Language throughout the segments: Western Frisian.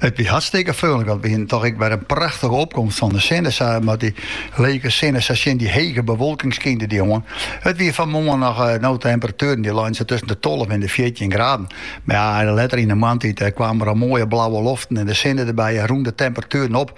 It wie hartstikke freonlik, want we hienen toch ek wer in prachtige opkomst fan de sinne. Sa mat, dy lege sinne, sa tsjin dy hege bewolking skynde dy oan. It wie fan 'e moarn noch eh, no temperatueren dy leinen sa tusken de 12 en de 14 graden. Mar ja, letter yn 'e moarntiid eh, kamen der al moaie blauwe loften en de sinne derby en rûnen de temperatueren op.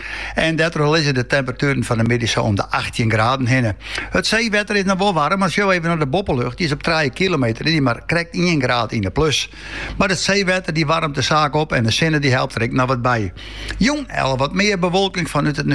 En dêrtroch lizze de temperatueren fan de middei sa om de 18 graden hinne. It seewetter is noch wol waarm, mar sjoch even op de boppelucht. Dy is op 3 kilometer hichte mar krekt 1 graad yn de plus. Maar it seewetter dy waarmet de saak op en de sinne dy helpt der ek noch wat by. Jûn, al wat mear bewolking fan út it,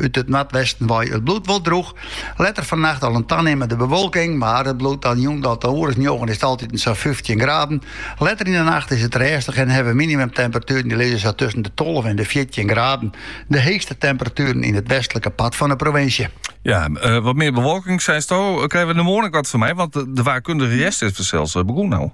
út it noardwesten wei, it bliuwt wol droech. Letter fannacht al in tanimmende bewolking, mar it bliuwt dan jûn tsjin in oere as njoggen is it altiten noch sa'n fyftjin graden. Letter yn 'e nacht is it rêstich en hawwe we minimumtemperatueren dy lizze sa tusken de tolve en de fjirtjin graden de heechste temperatueren yn it westlike part fan 'e provinsje. Ja, wat mear bewolking, seisto. Krije we dêr moarn ek wat fan mei, want de waarkundige hjerst is fansels begûn al.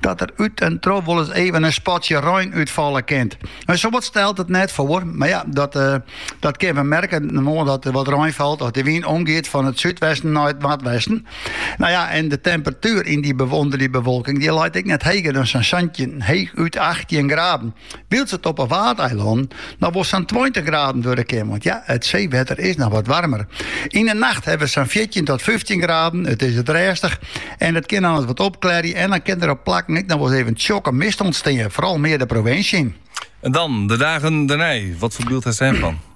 Dat der út en troch wol ris even in spatsje rein útfalle kin. En safolle stelt it net foar, mar ja, dat, uh, dat kin we merken moarn dat er wat rein falt as de wyn omgiet fan it súdwesten nei it noardwesten. No ja, en de temperatuer yn dy, ûnder dy bewolking dy leit ek net heger as sa'n 17, heechút 18 graden. Wylst it op 'e Waadeilannen noch wol sa'n tweintich graden wurde kin, want ja, it seewetter is noch wat waarmer. Yn 'e nacht hawwe we sa'n fjirtjin oant fyftjin graden, it is rêstich en it kin al ris wat opklearje en dan kin der op plakken ek noch wol ris even tsjokke mist ûntstean, foaral mear de provinsje yn. En dan, de dagen dêrnei, wat foar byld hast dêrfan?